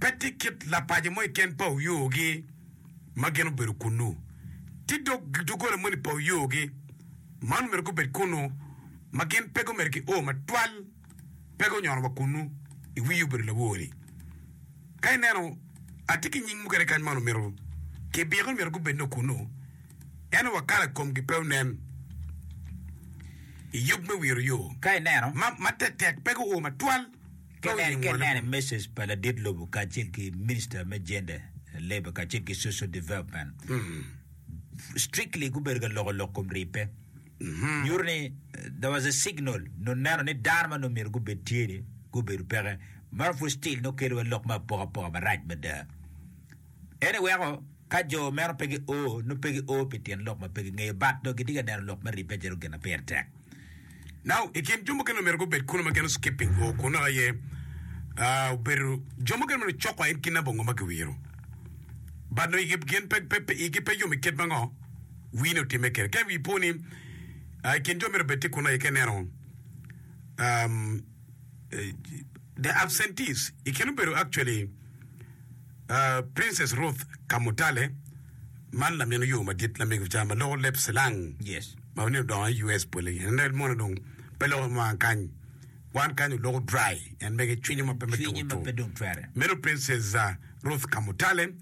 pe tye kit lapaco mo keken pa oyogi ma gin obedo kunnu. Tye dok doggola moni pa oyogi ma nongo myero gubed kunnu ma gin pe gumito ki o matwal pe gunyono wa kunnu. Iwii obedo lawor-ri ka ineno atye ki nying mukene kany ma nongo myero kibiko ni myero gubed nongo kunnu ento wa kala komgi pe onen i yub me wiro yo. Ka ineno. Ma tetek pe guo matwal. Kenen kenen message pa ladit lobo kacel ki minister me gender, labour kacel ki social development strictly gubedo ka loko lok kom ribbe. Nyuto ni there was a signal nongo neno ni dano ma nongo myero gubed tye ni gubedo peke. Meno pud still nongo kelo wa lok me apoka apoka marac mada. En aye weko ka jo meno pe gio, nongo pe gio pi tyen lok ma pe gingeyo, but dong gitye ka neno lok me ribbe calo gin ma pire tek. Now, i kin jo mukene omyero gubed kunu ma gin o-skipping o kunnu aye obedo jo mukene ma nongo cok aye kin na bongo ma giwiro, but nongo igi gin pe, pe, pe, igi pe yom i kit ma ngo wii ni otimme kede. Ka wii po ni i kin jo meno obed tye kunu aye ka ineno um, the absentees i kin obedo actually, Princess Ruth Kamutale, man lamin oyoo madit lamego ca ma loko leb cilang ma nongo odongo i US bwole gin. En moni dong pe loko i mwaka kany. Wan kany oloko dry en mege cwinyo ma pe me Cwinyo ma pe dong twere. Meno Princess ah, Ruth Kamutale,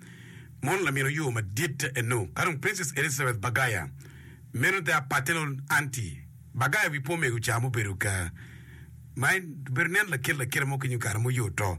mon lamin oyoo madit eno. Ka dong Princess Elizabeth Bagaya, meno the paternal aunty. Bagaya wi po mego ca mubedo ka ma en obedo nen lakit lakita mo ki nyo kare ma oyoo to.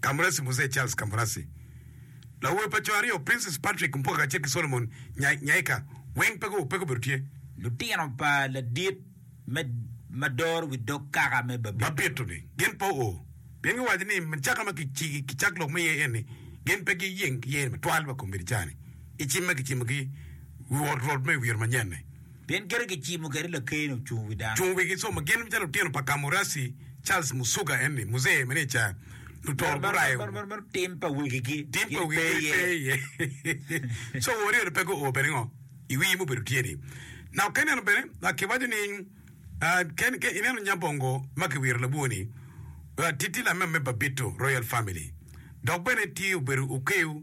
Kamurasi Muzee Charles Kamurasi, lawobe pa co aryo Princess Patrick Mpoka kacel ki Solomon Nyaika weng pe gubedo tye. Lutino pa ladit me ma doro wi dog kaka me Babito ni gin pe oo pien giwaco ni macaka ma kicak lok me iye eni gin pe giyeng ki iye ni matwal ma kombedi cani icim ma kicimo ki Rwot me Wiye Manyen-ni. Pien kite kicimo kwede lakeni ocung wi dano. Cung wigi somo. Gin calo lutino pa Kamurasi, Charles Musuga eni, Muzee Meneja, lutoro gurayo. Tim pa wegigi. Tim pa wegigi pe iye. Co wori eno pe guo bene ngo i wi mubedo tye ni. Na oken eno bene a kiwaco ni ken ke ineno Nyabongo ma kiwiro labwor ni titi lamem me Babito Royal Family dok bene tye obedo okeu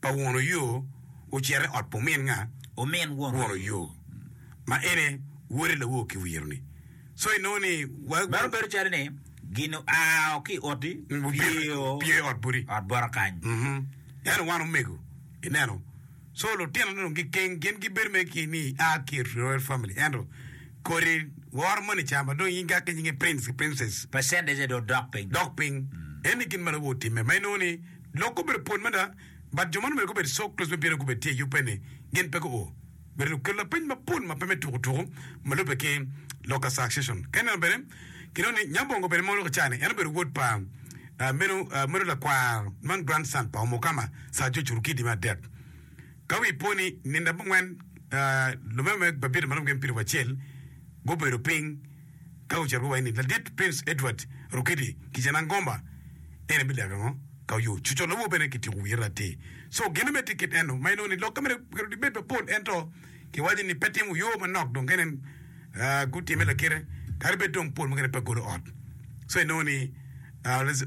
pa won oyo ocito i ot pa omin nga? Omin won oyo. Won oyo, ma en aye wode lawo ki wiro ni. So inongo ni wa. Meno bedo calo ni gin oao ki i oti pyeyo. Pyeyo i ot boti. Ot bota kany. Ento wan omego, ineno. So lutino ni dong gikeng, gin gibedo mere ki ni i a ki i royal family ento kodi woro moni ca ma dong in ka ki nyinge prince ki princess. Percentage dong dok piny. Dok piny. Eni gin ma lawo otimme ma inongo ni. Lok gubedo pwol mada, but jo man obedo gubedo so close me bino gubedo tye i upe ni gin pe guo. Bene dong kelo lapeny mapol ma pe me tuku tuku ma lube ki lok a succession. Ka ineno bene, kinongo ni Nyabongo bene mono kicayo ni en obedo wod pa meno meno lakwar man grandson pa Omukama Sir George Orukidi me adek. Ka wi po ni nino abongwen lume me Babito ma romo gin piero wacel gubedo piny, Ka ocito ki wayini ladit Prince Edward Rukidi ki Janan Gomba, en aye bileko ango? Ka oyo cuco lobo bene kityeko wiye ratti. So gin omedde kit eno ma inongo ni lok ka myero kare dong bed mapol ento ki waco ni pe timo yo manok dong kene gutime lakite kadi bed dong pol mukene pe golo ot. So inongo ni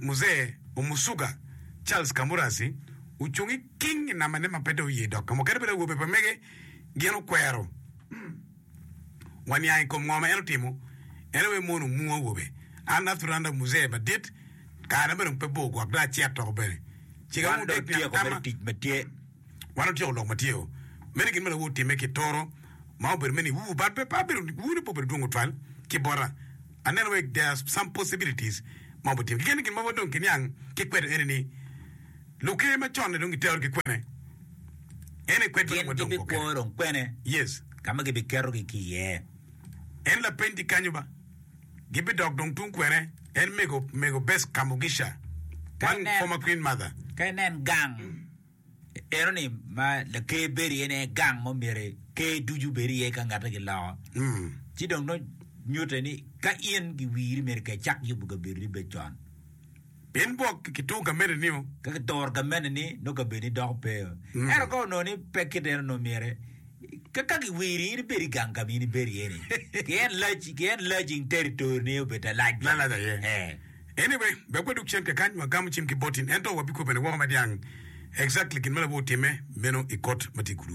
Muzee Omusuga Charles Kamurasi ocung iking inamane ma pe dong oye dok ka mukene bene awobe pa mege gin okwero. Waniang i kom ngo ma en otimo, en aye mono mung awobe. An Arthur Anda Muzee madit, karana bene dong pe bor gwok dong acito toko bene. Cika Wan mung dong dek nino otyeko atama. mere tic ma tye. Wan otyeko lok ma tye o. Meno gin ma lawu otimme ki toro ma obedo me niwu but pe pa bedo niwu ne pe obedo dwong tutwal ki bota. Aneno wek there are some possibilities ma obitimo. Keken ni gin ma wodong kiniang ki kweto eni ni, Luker ma conne dong giterogi kwene? En e kwed ma Gin lubwa dong gukene. gibikwo dong kwene Yes. ka ma gibiketogi ki iye? En lapeny tye kanyo ba. Gibidok dong tung kwene? En mego, mego Bess Kamugisha, Ka one inen- former Queen Mother. Ka inen gang enoni ma laker bedo iye-ni en aye gang ma myero ker ducu bed iye ka ngatte giloko. Mm. Ci dong nongo nyutte ni ka in giwiri myero kicak yubo kabedoni bed con. Pien bwok kitur gamente nio. Ka kituro gamente ni, nongo kabedoni doko pe o. Ento ka onongo ni pe kit eno, nongo myere ka ka kiwiri in ibed i gang ka ma in ibedo iye ni, ki en lac ki en lac in territory ni obed lalac bene. Lalac aye. Eh. Anyway, wek wadog cen kakany, wagam cim ki botin, ento wabikobo bene woko ma dyang exactly gin ma labwor otimme meno i kot ma tye kulu.